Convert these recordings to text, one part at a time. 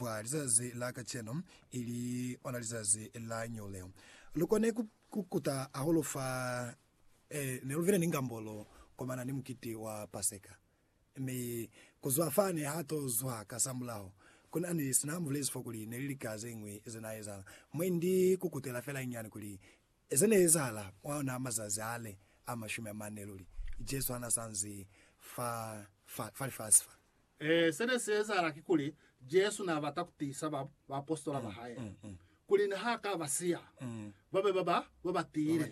kwa lizazi la kacenu, ili ona lizazi la New leo. Lukone ku kukuta hahulu fa eh, ne luvile ni ngambolo komana ni mukiti wa Paseka. Mi kuzwa fani ha to zwa ka samulaho, kuna ni sina mubulezi fo kuli neli lika zeñwi ze na ezahala. Mwe ndi kukutela fela nyani kuli ze ne ezahala mwa ona mazazi ale a mashumi amane luli, Jesu hana sanzi fa, fa, fa lifasi fa. Ee, se ne si ezahala kikuli Jesu n'a bata ku tiisa baapositola ba hae kuli ni ha ka ba siya, ba be ba ba ba tiile,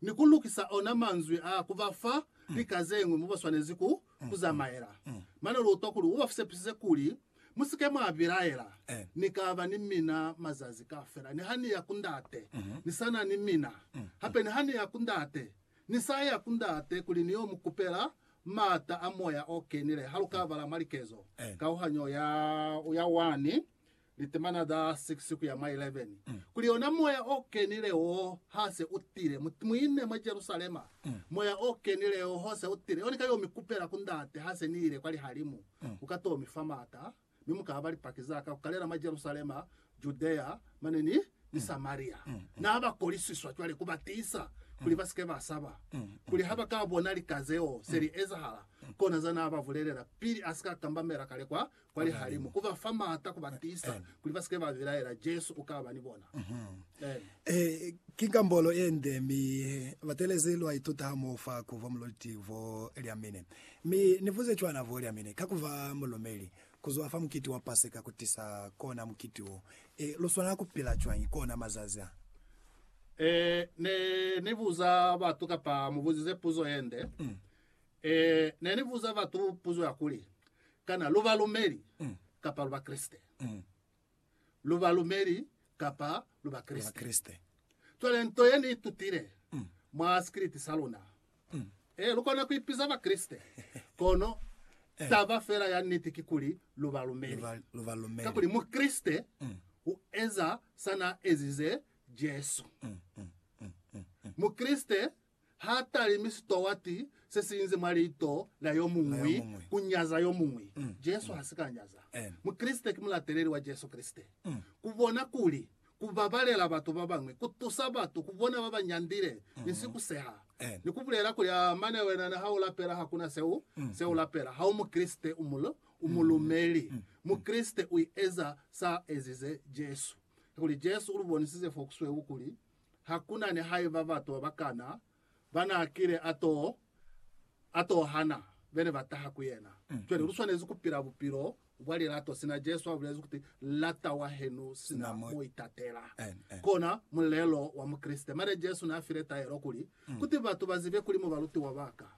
ni ku lukisa ona manzwi a ku ba fa lika ze ñwi mo ba swanezi ku zamaela. Mane lu utwa kuli u ba sepisize kuli, Mu si ke mwa bilaela. Ni ka ba ni mina mazazi kaufela. Ni ha ni ya ku Ndate, ni sa na ni mina. Hape ni ha ni ya ku Ndate, ni sa ya ku Ndate kuli ni yo mu kupela maata a moya o kenile ha lu ka bala mwa likezo, kauhanyo ya ya 1, litemana za 6 ku ya mwa 11, kuli ona moya o kenile wo ha se u tile, mu, mu ine mwa Jerusalema, moya o kenile wo ha se u tile, yo ni ka yo mi kupela ku Ndate ha se ni ile kwa lihalimu, u ka to mi fa maata. mi mu ka ba lipaki za ka ku kalela mwa Jerusalema, Judea, mane ni, ni Samaria. Na ba kolisiswa cwale ku ba tiisa kuli ba si ke ba saba, kuli ha ba ka bona lika zeo se li ezahala, kona za na ba bulelela pili a si ka kambamela kale kwa, kwa lihalimu, ku ba fa m'ata ku ba tiisa kuli ba si ke ba bilaela. Jesu u ka ba ni bona. Amen. Ee, ki kambolo ye nde, mi batelezi lwa ituta hamoho fa ku vwa muloliti vwa lya mine. Mi Ni buze cwana bo lyamine ka kuba mulumeli, kuzwa fa mukiti wa Paseka kutisa kona mukiti wo. E, lu swanela kupila cwañi kona mazazi a? E, Ne ni buza batu, kapa mubuzize puzo yende. E, Ne ni buza batu puzo ya kuli, Kana lu balumeli kapa lu Bakreste? lu balumeli kapa lu Bakreste. Cwale nto ye ni itutile mwa sikiliti sa luna, ee, lu kona ku ipiza Bakreste, kono taba fela ya niti kikuli lu balumeli. Kakuli Mukreste u eza sa n'a ezize Jesu. Mukreste Ha talimi sitowati se si inze mwa lito la yo muñwi ku nyaza yo muñwi. Jesu ha si ka nyaza. Mukreste ki mulateleli wa Jesu Kreste. Ku bona kuli ku babalela batu ba bañwi ku tusa batu ku bona ba ba nyandile ni si ku seha, ni ku bulela kuli, Aa, mane wena ni ha u lapela ha ku na se u se u lapela. Ha u Mukreste, u mulumeli. Mukreste u eza sa ezize Jesu. Kakuli Jesu u lu bonisize fo ku sweu kuli ha ku na ni haiba bato ba kana ba n'a kile a to a to hana be ne ba taha ku yena. Cwale lu swanezi ku pila bupilo bwa lilato sina Jesu a bulezi kuti, Lata wahenu sina mo itatela. Kona mulelo wa Mukreste. Mane Jesu n'a file taelo kuli, Kuti batu ba zibe kuli mu balutiwa ba ka,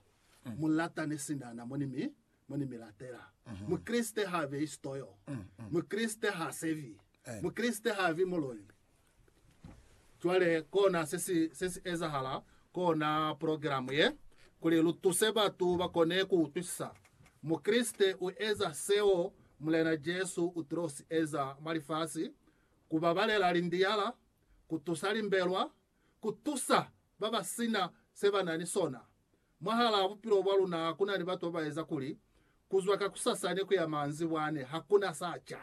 mu latane sina na mo ni mi mo ni mi latela. Mukreste h'a beyi sitoyo. Mukreste h'a sevi. Mukreste h'a vi muloi. Cwale kona se si, se si ezahala kona progilamu ye, kuli lu tuse batu ba kone ku utwisisa. Mukreste u eza seo Mulena Jesu u tilo si eza mwa lifasi, ku babalela lindiyala, ku tusa limbelwa, ku tusa ba ba si na se ba na ni sona. Mwahalaa bupilo bwa luna ku na ni batu ba ba eza kuli, Ku zwa kakusasani ku ya maanzibwani, ha ku na sa ca.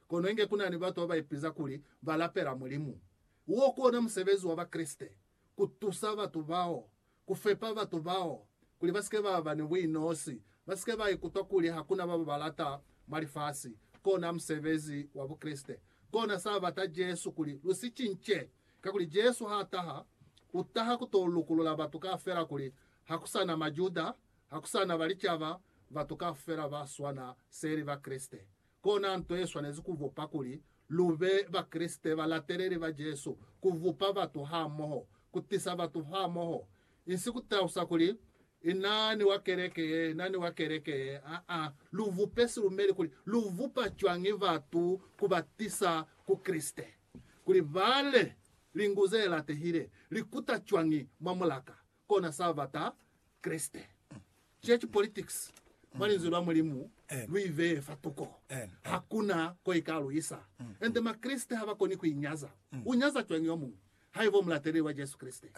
Kono inge ku na ni batu ba ba ipiza kuli ba lapela Mulimu. Wo ku ona musebezi wa Bakreste, ku tusa batu bao, ku fepa batu bao kuli ba si ke ba ba ni buinosi, ba si ke ba ikutwa kuli ha ku na ba ba ba lata mwa lifasi. Kona musebezi wa Bukreste. Kona sa bata Jesu kuli lu si cince. Kakuli Jesu ha taha, u taha ku to lukulula batu kaufela kuli ha ku sa na Majuda, ha ku sa na Balicaba, batu kaufela ba swana seli Bakreste. Kona nto ye swanezi ku vupa kuli lu be Bakreste balateleli ba Jesu, ku vupa batu hamoho, ku tisa batu hamoho. Insi ku talusa kuli, I na ni wa keleke ye, i na ni wa keleke ye. Aa. Lu vupe silumeli kuli lu vupa cwañi batu ku ba tisa ku Kreste, kuli ba le lingu ze latehile, li kuta cwañi mwa mulaka, kona sa bata Kreste. Church politics, mwa Linzwi lwa Mulimu, lu i beye fa tuko. Ha ku na ko i ka lu isa. Ende Makreste ha ba koni ku i nyaza. U nyaza cwañi yo muñwi, haiba u mulateleli wa Jesu Kreste?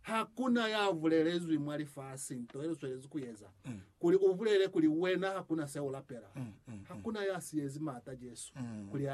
Ha ku na ya bulelezwi mwa lifasi nto ye lu swelezi ku eza, kuli u bulele kuli wena ha ku na se u lapela. Ha ku na ya siyezi maata Jesu kuli a